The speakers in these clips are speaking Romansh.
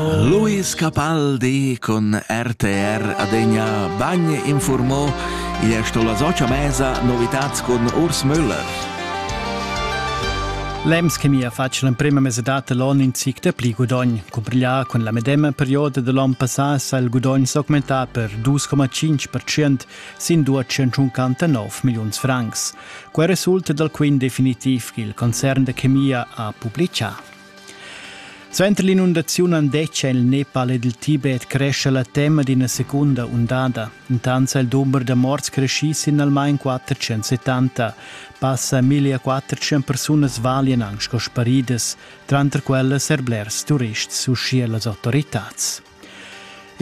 Luis Capaldi con RTR adegna bagn informò e è sto la socia mesa novitats con Urs Müller. L'EMS che mi ha fatg l'emprema mesedata l'on in zic da pli gudogn. Cumpriglià con la medema perioda dell'on passà sa il gudogn s'augmentà per 2,5% sin 259 milliuns francs. Quel resulta dal quint definitiv che il concern da chemia ha publicà. Suenter l'inundaziun andetgia il Nepal ed il Tibet crescha la tema d'ina secunda undada. Intant ha il dumber da morts creschì sin almain 470. Passa 1400 persunas valian anc sco sparidas, tranter quellas er blers turists, uschia las autoritads.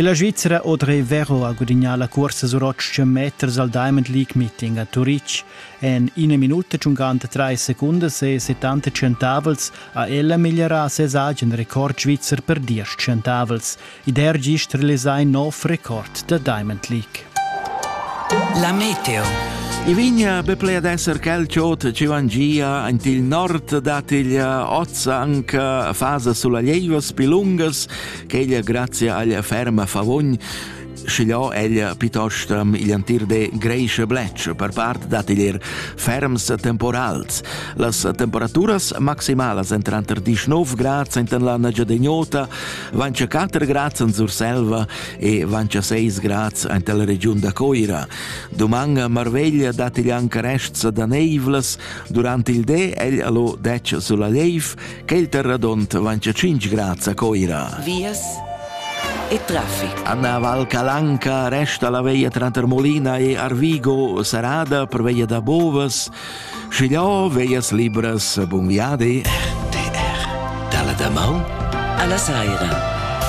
La Svizra Audrey Vero ha gudagnà la cursa sur 800 meters al Diamond League Meeting a Turitg. En ina minuta tschungant trais secundas e 70 centavels ha ella migliorà ses agen record svizzer per diesch centavels. Ed er gist realisà in nov record da Diamond League. La meteo. I vigna be ple ad esser quel ciot ci vangia ant il nord dat il ozza anca fasa sulla lieivas pi lungas ch'ella grazia alla ferma favogn schigliò ella piuttosto igl entir de greische bletsch per part dat igl ferms temporals. Las temperaturas maximalas en tranter 19 grad sentan la Giadegnota, vance 4 grad en Surselva e vance 6 grad en la regiun da Coira. Doman marveglia dat igl anche rests da neivlas, durante il de egl lo dec sulla leif Quel terradont vancha 5 grads a Coira. Vias e traffic. Anna Val Calanca resta la veia tranter Molina e Arvigo serrada per veia da Bovas. Schigliò, veias libras, bun viadi. RTR, dalla da Mau alla Saira.